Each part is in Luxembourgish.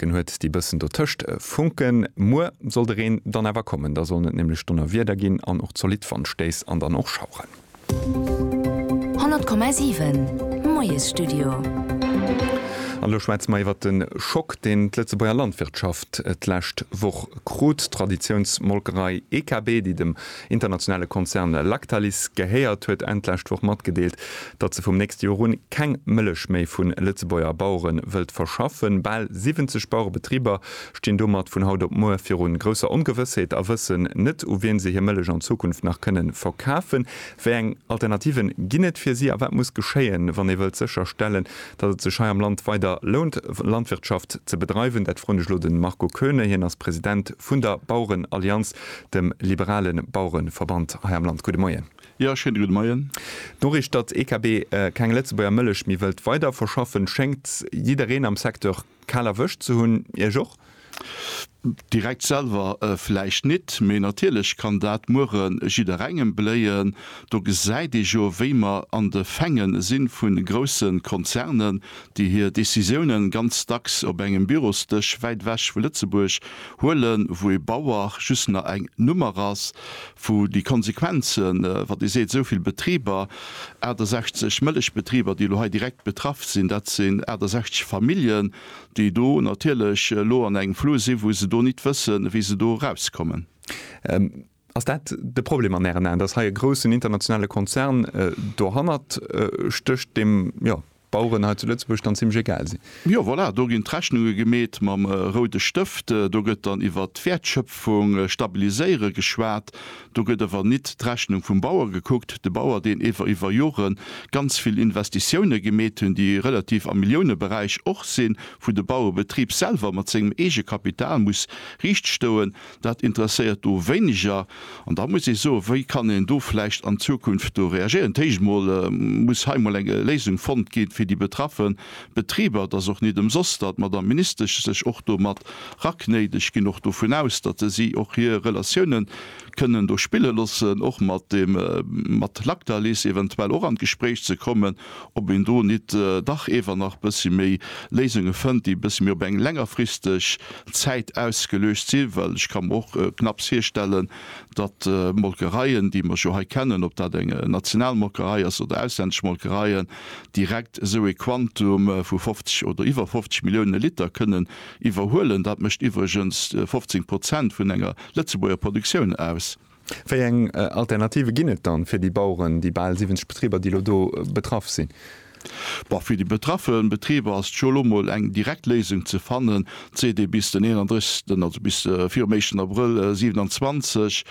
Den huet déi bëssen dotëscht Funken. Muer soll de Reen dann awer kommen, da sollen et nämlech Donnerwieder ginn an och zolidd Wandstéiss an dann och Schaueren. 100,7 Moiesstudio. An elo schwätze mer iwwert de Schock, deen d'Lëtzebuerger Landwirtschaft d'lescht Woch krut. D'Traditiounsmolkerei EKB, déi dem internationale Konzern Lactalis gehéiert, huet Enn d'lescht Woch matgedeelt, datt se vum nächste Joer un keng Mëllech méi vu Lëtzebuerger Bauere wëllt verschaffen. Bal 70 Bauerebetriber stinn domat vun haut op muer viru grousser Ongewëssheet a wëssen net, u wiem se hir Mëllech an Zukunft nach kënne verkafen. Wéi eng Alternative ginn et fir si a wat muss geschéien, wann ee wëllt sécher stellen, datt et sech hei am Land weider lount, Landwirtschaft ze bedreiwen? Dat froen ech elo de Marco Koeune. Hien ass President vun der Bauerenallianz. dem liberale Bauerenverband hei am Land. Gudde Moien. Jo, schéine gudde Moien. D'Noriicht, datt d'EKB keng Lëtzebuerger Mëllech méi wëllt weider verschaffen, schéngt jiddereen am Secteur kal erwëscht ze hunn. Iech och? Direkt selwer vläicht nit, mee natierlech kann dat muere jidderengem bléien. Do gesäit ee jo, wéi mer an de Fänge si vu grousse Konzernen, déi hir Decisiounen ganz dacks op engem Bürosdësch wäit ewech vu Lëtzebuerg huelen, wou ee Bauer just nach eng Nummer ass, wou déi Konsequenzen, wat ee seet, esou vill Betriber, 68 Mëllechbetriber, déi elo hei direkt betraff sinn, dat sinn 68 Familljen, déi do natierlech elo an engem Flou sinn, wou se do nit wëssen, wéi se do erauskommen. Ass dat de Problem an Ären Aen, dass hei e groussen internationale Konzern dohannert stécht, deem, jo, d'Baueren hei zu Lëtzebuerg dann zimmlech egal sinn? Jo, voilà, do ginn d'Rechnunge gemeet mam roude Stëft. Do gëtt dann iwwert d'Wäertschöpfung, Stabiliséiere geschwat. Do gëtt awer nit d'Rechnung vum Bauer gekuckt, de Bauer, deen ewer iwwer Jore ganz vill Investitioune gemeet hunn, déi relativ am Milliouneberäich och sinn, wou de Bauerebetrib selwer mat sengem Eegekapital muss riichtstoen. Dat interesséiert do wéineger. An da muss ee soen, wéi kann een do vläicht an Zukunft do reagéieren. Dat Éischt emol muss hei emol eng Léisung fonnt ginn, fir déi betraffe Betriber. Et ass och net ëmsoss, datt d'Madame Ministesch sech och do mat raknéit. Ech ginn och dovun aus, datt se si och hir Relatiounen kënnen do spille loossen, och mat dem, mat Lactalis eventuell och an d'Gespréich ze kommen. ob een do nit dach ewer nach bessi méi Léisunge fënnt, déi bessi méi op eng längerfristeg Zäit ausgeluecht si, well ech ka mer och knapps virstellen, datt Molkereien, déi mer jo hei kennen, ob dat eng national Molkerei ass oder auslännesch Molkereien, direkt esou ee Quantum vu 50 oder iwwer 50 Milliounen Liter kënnen iwwerhuelen. Dat mécht iwwregens 15 Prozent vun enger Lëtzebuerger Produktioun aus. Wéi eng Alternative ginn et dann fir déi Baueren, déi bal 70 Betriber, déi elo do betraff sinn? Bon, fir déi betraffe Betriber ass scho elo mol eng direkt Léisung ze fannen, seet ee. Bis den 31, also bis virum éischten Abrëll 27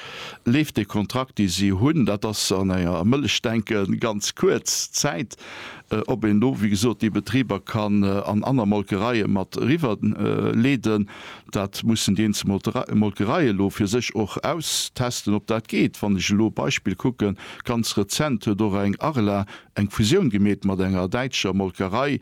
leeft de Kontrakt, dee si hunn. Dat ass an enger Mëllech denke ganz kuerz Zäit. Ob een do, wéi gesot, déi Betriber kann an aner Molkereie mat eriwwer leeden, Dat mussen déi eenzel Molkereie elo fir sech och austesten, ob dat geet. Wann ech elo e Beispill kucken, ganz rezent huet och eng Arla eng Fusioun gemeet mat enger däitscher Molkerei.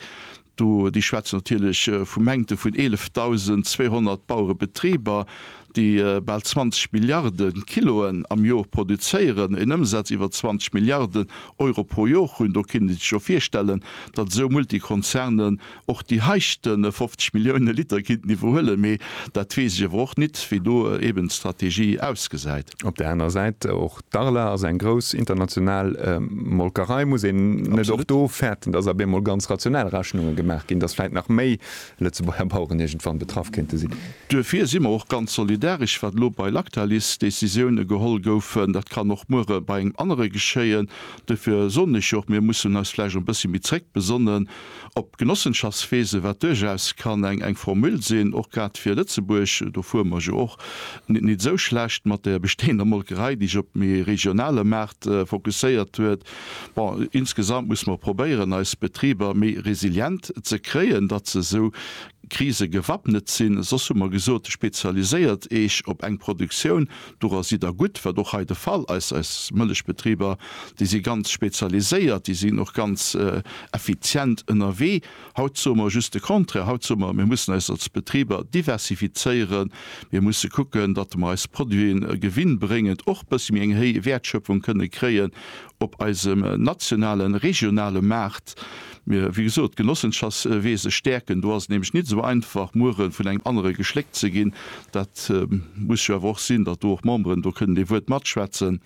Do, déi schwätzen natierlech vu Mängte vun 11.200 Bauerebetriber, déi bal 20 Milliarde Kiloen am Jor produzéieren, en Ëmsaz iwwer 20 Milliarden Euro pro Jor hunn. Do kinne se sech jo virstellen, datt esou Multikonzerne och déi heischte 50 Millioune Liter kinnt iwwerhuelen, mee dat weess ech awer och nit, wéi do eben d'Strategie ausgesäit. Op där anerer Säit, och d'Arla ass eng grouss international Molkerei. Muss een net och do fäerten, dass ab eemol ganz rationell Rechnunge gemaach ginn, dass vläit nach méi Lëtzebuerger Baueren iergendwann betraff kéinte sinn? Duerfir si mer och ganz solidaresch, wat elo bei Lactalis Décisioune geholl goufen. Dat kann och muere bei engem anere geschéien. Duerfir soen ech jo och, mir mussen eis vläicht och e bëssi méi zréckbesonnen. Op Genossenschaftsfeese, wat duerchaus kann eng eng Formule sinn, och grad fir Lëtzebuerg, do fuere mer jo och nit nit esou schlecht mat der bestehender Molkerei, déi sech op méi regionale Maart fokusséiert huet. Bon, insgesamt muss mer probéieren, eis Betriber méi resilient ze kréien, datt se esou Krise gewappnet sinn. Soss hu mer gesot, spezialiséiert Eech op eng Produktioun, Doran sidd Der gutt, wat och hei de Fall ass. Eis Mëllechbetriber, déi si ganz spezialiséiert, déi sinn och ganz effizient ënnerwee. Haut soe mer just de Contraire. Haut soe mer, mir mussen eis als Betriber diversifizéieren, mir musse kucken, datt mer eis Produiten gewinnbréngend och bëssi méi eng héi Wäertschöpfung kënne kréien op eisem nationalen, regionale Maart. Mee wéi gesot, d'Genossenschafts weese stäerken, do ass et nämlech nit esou einfach muere vun engem anere geschléckt ze ginn. Dat muss jo awer och sinn, datt do och Memberen do kënnen ee Wuert matschwätzen.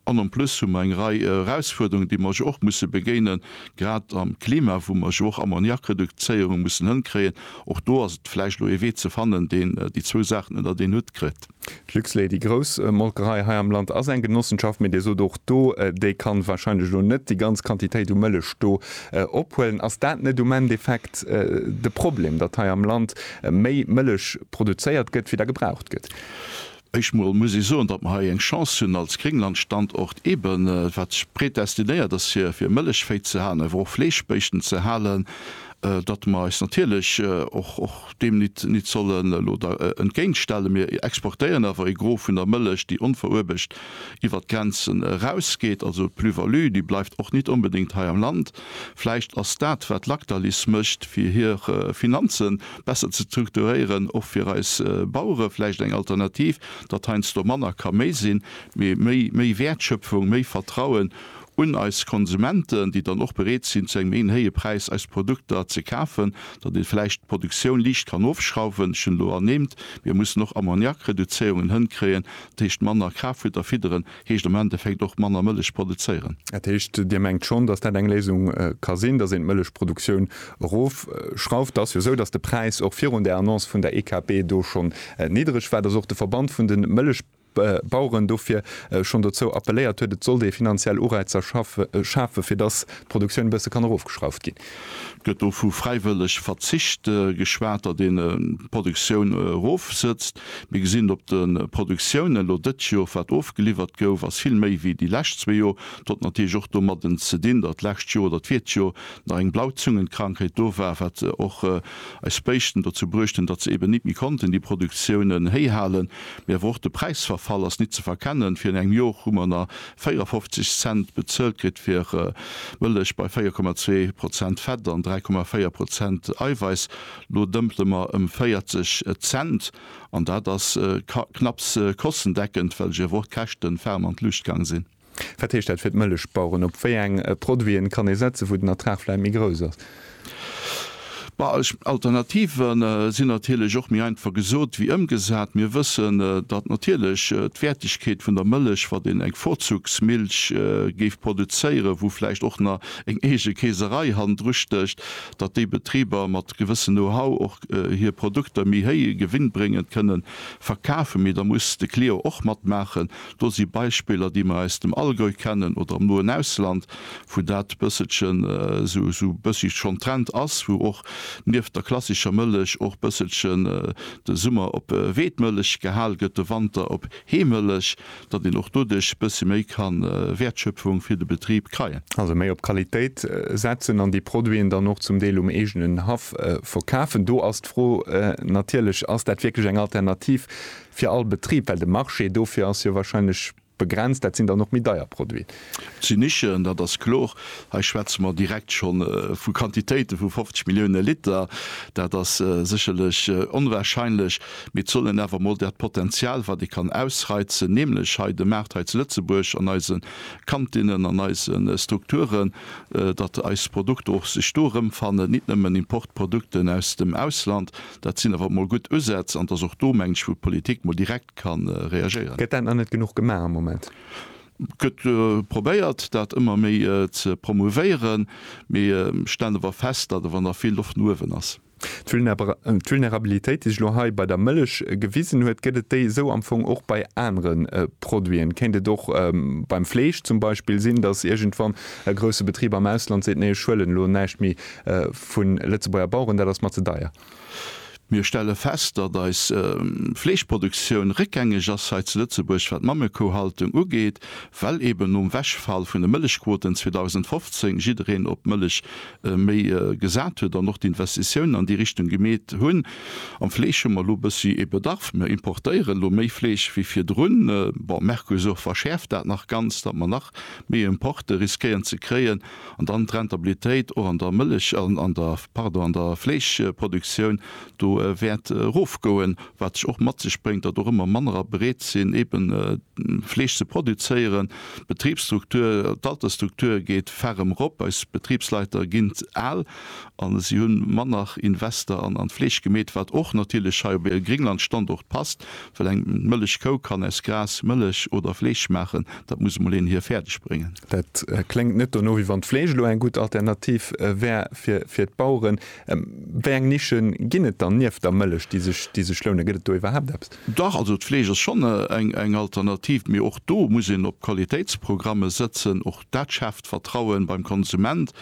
An en plus hu mer eng Rei Erausfuerderungen, déi mer jo och musse begéinen, grad am Klima, wou mer jo och Ammoniakreduzéierung mussen hënkréien. Och do ass et vläicht elo ee Wee ze fannen, deen déi zwou Saachen ënnert een Hutt kritt. D'Luxlait, déi grouss Molkerei hei am Land, ass eng Genossenschaft, mee Dir sot och do, déi ka wahrscheinlech elo net déi ganz Quantitéit u Mëllech do ophuelen. Ass dat net um Endeffekt de Problem, datt hei am Land méi Mëllech produzéiert gëtt, wéi der gebraucht gëtt? Éischt emol muss ee soen, datt mer hei eng Chance hunn als Grénglandstandort, eebe wat predestinéiert ass fir Mëllech véi ze halen, awer och Fleeschbéischten ze halen. datt mer eis natierlech och deem nit sollen elo da entgéintstellen. Mir exportéieren awer e Gros vun der Mëllech, déi onveruebegt iwwer d'Grenzen erausgeet, also d'Plus-value, déi bleift och nit onbedéngt hei am Land. Vläicht ass dat, wat Lactalis mécht, fir hir Finanze besser ze strukturéieren, och fir eis Bauere vläicht eng Alternativ, datt heiansdo manner ka méi sinn, mee méi Wäertschöpfung, méi Vertrauen un eis Konsumenten, déi dann och bereet sinn, zu engem méi héije Präis eis Produkter ze kafen, datt ee vläicht d'Produktioun liicht kann ofschrauwen. Ech hunn elo ernimmt, mir mussen och Ammoniakreduzéierungen hënkréien. Dat heescht, manner Kraftfutter fidderen heescht am Endeffekt och manner Mëllech produzéieren. Dat heescht, Dir mengt schonn, datt dat eng Léisung ka sinn, datt een d'Mëllechproduktioun erofschrauft? Et ass jo esou, datt de Präis och virun där Annonce vun der EKP do schonn niddereg war, datt och de Verband vun de Mëllechbaueren, Baueren dofir schonn dozou appelléiert huet, et sollt ee finanziell Ureizer schafen, fir datt d'Produktioun e bësse kann erofgeschrauft ginn. Et gëtt do vu fräiwëlleg Verzicht geschwat, datt een d'Produktioun erofsetzt. Mir gesinn et op de Produktioune elo dëtt Jor, wat ofgeliwwert gouf, ass vill méi wéi déi lescht zwee Jor. Dat huet natierlech och domadden ze dinn, datt d'lescht Jor oder d'virt Jor nach eng Blauzungenkrankheet do war, wat och eis Béischten dozou bruechten, datt se eben nit méi konnten déi Produktiounen héi halen, mee awer och de Präisverfall ass nit ze verkennen. Virun engem Jor hu mer na 54 Cent bezuelt kritt fir Mëllech bei 4,2 Prozent Fett an 3,4 Prozent Eiwäiss, lo dëmpele mer ëm 40 Cent an dat ass knapps kostendeckend, well ech awer och d'Käschten ferm an d'Luucht gaang sinn. Wat heescht dat fir d'Mëllechbaueren? Op wéi eng Produiten kann ee setzen, wou den Ertrag vläicht méi grouss ass? Alternative sinn natierlech och méi einfach gesot wéi ëmgesat. Mir wëssen, datt natierlech d'Wäertegkeet vun der Mëllech, wann een eng Vorzugsmilch géif produzéieren, wou vläicht och nach eng eege Keeserei hannendru stécht, datt déi Betriber mat gewëssen Know-how och hir Produkter méi héije gewinnbréngend kënnen verkafen. Mee da muss de Client och matmaachen. Do si Beispiller, déi mer aus dem Allgäu kennen oder am noen Ausland, wou dat bësselchen esou bëssig schonn Trend ass, wou och nieft der klassischer Mëllech och bësselchen de Summer op Weedmëllech gehal gëtt, de Wanter op Heemëllech, datt een och doduerch bëssi méi kann Wäertschöpfung fir de Betrib kreien. Also méi op Qualitéit setzen an déi Produiten dann och zum Deel um eegenen Haff verkafen. Do ass d'Fro natierlech, Ass dat wierklech eng Alternativ Fir all Betrib, well de Marché dofir ass jo wahrscheinlech begrenzt, dat sinn dann och méi deier Produiten. Et sinn Nischen, dat ass kloer. Hei schwätze mer direkt scho vu Quantitéite vu 50 Millioune Liter. Dat ass sécherlech onwahrscheinlech, mee et soll een awer emol dat Potenzial, wat ee kann ausreizen, nämlech hei de Maart hei zu Lëtzebuerg an eise Kantinnen, an eise Strukturen, datt eis Produkter och sech do erëmfannen, nit nëmmen Importprodukten aus dem Ausland. Dat sinn awer emol gutt Usätz an et ass och do, mengen ech, wou d'Politik mol direkt ka reagéieren. Gëtt dat nach net genuch gemaach am Moment? Et gëtt probéiert, dat ëmmer méi ze promouvéieren, mee ech stellen awer fest, datt awer nach vill Loft no uewen ass. D'Vulnerabilitéit, déi sech elo hei bei der Mëllech gewisen huet, gëtt et déi esou am Fong och bei anere Produiten? Kéint et och beim Fleesch zum Beispill sinn, datt iergendwann e grousse Betrib am Ausland seet, Nee, ech huelen elo näischt méi Vu Lëtzebuerger Baueren, dat ass mer ze deier. Mir stelle fest, datt eis Fleeschproduktioun réckgängeg ass hei zu Lëtzebuerg, wat d'Mammekouhaltung ugeet, well eben nom Wegfall vun de Mëllechquoten 2015 jiddereen op d'Mëllech méi gesat huet an och d'Investitiounen an déi Richtung gemeet hunn. Am Fleesch hu mer elo e bëssi ee Bedarf. Mir importéieren elo méi Fleesch wéi virdrun. Bon, Mercosur verschäerft dat nach ganz, datt mer nach méi Importe riskéieren ze kréien. An dann d'Rentabilitéit och an der Mëllech, an der, pardon, an der Fleeschproduktioun do wäert erofgoen, wat sech och mat sech bréngt, datt och ëmmer mannerer bereet sinn, eebe Fleesch ze produzéieren. D'Betribsstruktur, d'Altersstruktur geet ferrem erop. Eis Betribsleiter ginn al a si hu manner Invester an d'Fleesch gemeet, wat och natierlech hei op e Gringlandstandort passt, well eng Mëllechkou kann aus Gras Mëllech oder Fleesch maachen. Dat muss emol een hir fäerdeg bréngen. Dat kléngt net dono, wéi wann d'Fleesch elo eng gutt Alternativ wär fir d'Baueren. Wéi eng Nischen ginn et dann nieft der Mëllech, déi sech lounen? Gëtt et do iwwerhaapt eppes? Dach, also d'Fleesch ass schonn eng Alternativ, mee och do muss een op Qualitéitsprogramme sëtzen. Och dat schaaft Vertrauen beim Konsument.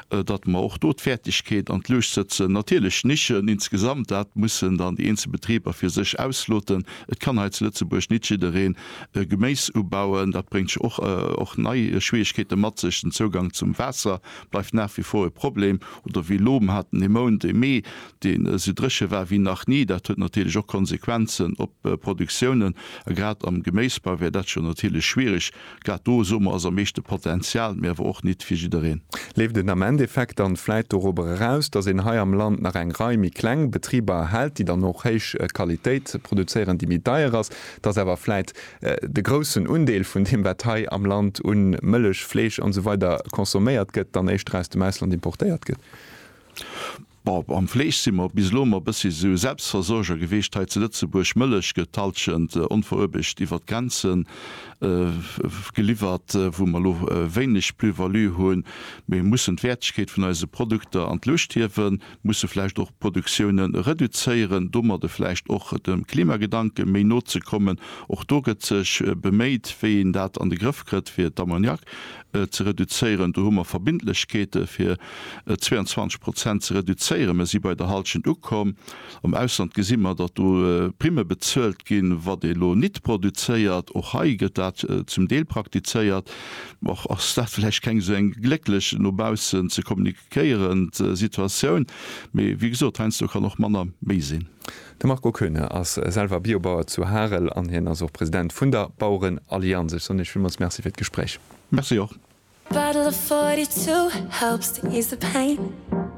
datt mer och do d'Fäertegkeet an d'Luucht sëtzen, natierlech Nischen insgesamt, dat mussen dann déi eenzel Betriber fir sech ausloten. Et kann hei zu Lëtzebuerg nit jiddereen Geméis ubauen, dat bréngt jo och och nei Schwierigkeete mat sech. Den Zougang zum Waasser bleift nach wie vor e Problem oder wéi elo, mer haten e Mount, e Mee, deen esou dréche war wéi nach ni. Dat huet natierlech och Konsequenzen op Produktiounen a grad am Geméisbau wär dat scho natierlech schwierig, Grad do, soe mer, ass am meeschte Potenzial, mee awer och nit fir jiddereen. Leeft een am Endeffekt dann vläit dorobber eraus, dass een hei am Land nach eng Rei méi kleng Betriber erhält, déi dann och héich Qualitéit produzéieren, déi méi deier ass, dass awer vläit de groussen Undeel vun deem, wat hei am Land u Mëllech, Fleesch an esou weider consomméiert gëtt, dann éischter aus dem Ausland importéiert gëtt? Bon, am Fleesch si mer bis elo ëmmer e bëssi esou Selbstversorger geweecht hei zu Lëtzebuerg. Mëllech gëtt d'Hallschent onveruebegt iwwer d'Grenze geliwwert, wou mer elo wéineg Plus-value hunn. Mir mussen d'Wäertegkeet vun eise Produkter an d'Luucht hiewen, musse vläicht och d'Produktioune reduzéieren, domadde vläicht och dem Klimagedanke méi no ze kommen. Och do gëtt sech beméit, wéi een dat an de Grëff kritt, fir d'Ammoniak ze reduzéieren. Do hu mer Verbindlechkeete fir 22 Prozent ze reduzéieren. Mer si bei der Halschent ukomm. Am Ausland gesi mer, datt do Primme bezuelt ginn, wat ee lo nit produzéiert. Och hei gëtt dat zum Deel praktizéiert. Och ass dat vläicht keng esou eng glécklech, no baussen ze kommuniquéierend Situatioun. Mee wéi gesot, heiansdo kann och manner méi sinn. De Marco Koeune ass selwer Biobauer zu Harel an hien ass och President vun der Bauerenallianz. Ech soen Iech villmools Merci fir d'Gespréich. Merci och.